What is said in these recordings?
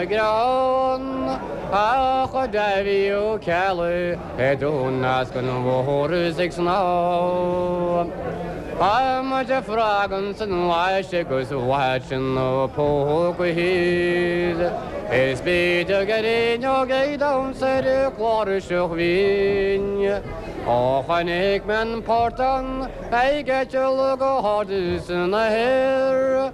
Greann a chuir Davy Ó Ceallaigh ar Dónal eascann mhór ag snámh. Adhmaid frog ann is an watch agus é istigh ina phóca thíos. Is beidh gráinneog ag damhsa ar chláirseach bhinn. Ó chonaic mé an portán ag eiteall go hard san aer.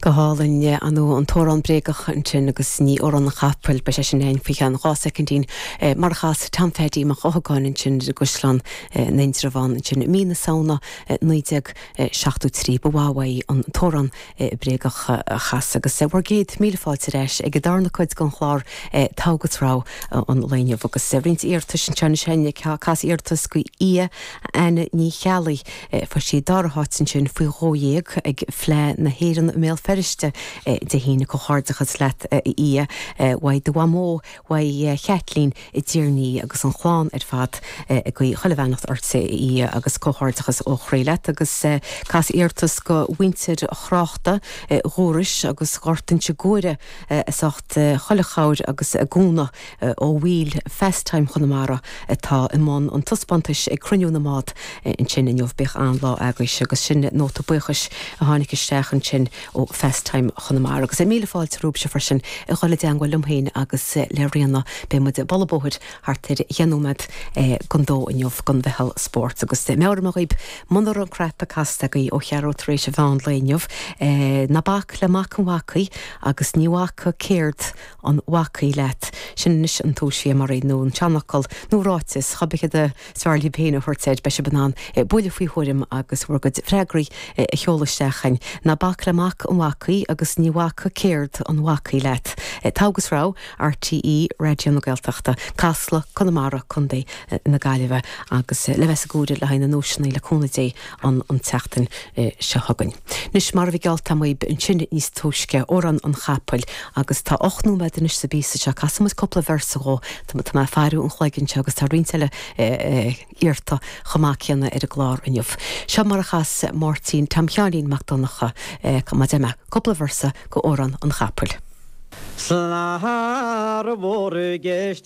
Go hálainn, ar ndóigh, an t-amhrán bréagach ansin agus ní amhrán an chapaill? Beidh sé sin againn faoi cheann dhá soicindín, mar a chas Tom Pheaidí Mac Eochagáin ansin ar an gCaisleán in Indreabhán ansin i mí na Samhna 1973. Ba mhaith uaidh an t-amhrán bréagach a chasadh agus bhur gcéad míle fáilte ar ais ag an darna cuid den chlár Togha agus Rogha an lae inniu agus roinnt iarratais anseo anois againn, cas iarratas do Fhia Anna Ní Cheallaigh. Fuair sí an dara háit ansin faoi dhó dhéag ag Fleadh na hÉireann i mBéal Feirste Dé hAoine. Comhghairdeachas leat a Fhia, uaidh do mhamó, uaidh Chaitlín i dTír an Fhia agus an chlann ar fad ag guí chuile bheannacht ortsa a Fhia agus comhghairdeachas ó chroí leat agus cas iarratas go mhuintir Thráchta, Dhúrois agus Ghort Inse Guaire as ucht chuile chabhair agus a gcúnamh. ó bhaill Phastime Chonamara atá i mbun an taispeántais ag Cruinniú na mBád ansin inniu. Beidh an-lá agaibh agus sin nóta buíochais a tháinig isteach ansin ó Phastime Chonamara. Agus míle fáilte romhaibhse freisin a dhul i dteangmháil liom féin agus le Ríona. Beidh muid ag bualadh bóthair thart ar dheich nóiméad don dó inniu don Mheitheal Spóirt. Agus meabhraím dhaoibh, muna raibh an cnaipe casta agaibh ó cheathrú tar éis mheán lae inniu, ná bac le mac an bhacaí agus ní bhacfaidh céard. an bhacaí leat. Sin anois an tomhais samhraidh, nó an seanfhocal, nó ráiteas, cébí céard is fearr libh féin a thabhairt air, beidh sibh in ann buille faoi thuairim agus bhur gcuid freagraí a sheoladh isteach chugainn. Ná bac le mac an bhacaí agus ní bhacfaidh céard an bhacaí leat. Togha agus Rogha, RTÉ Raidió na Gaeltachta, Casla, Conamara, Co. na Gaillimhe, agus le bheith sa gcúirt le haghaidh na nduaiseanna, le cúnamh Dé. ann an tseachtain seo chugainn. Anois, mar a bhí geallta agam dhaoibh ansin níos túisce, Amhrán an Chapaill, agus tá ocht nóiméad anois sa bpíosa seo, casfaidh muid cúpla véarsa dhó, tá mé ag faireadh an chloig anseo agus tá roinnt eile iarrta chomh maith céanna ar an gclár inniu. Seo mar a chas Máirtín Tom Sheáinín Mac Donnacha, cá mba é mé? cúpla véarsa go Amhrán an Chapaill. Slán thar bhur gceist.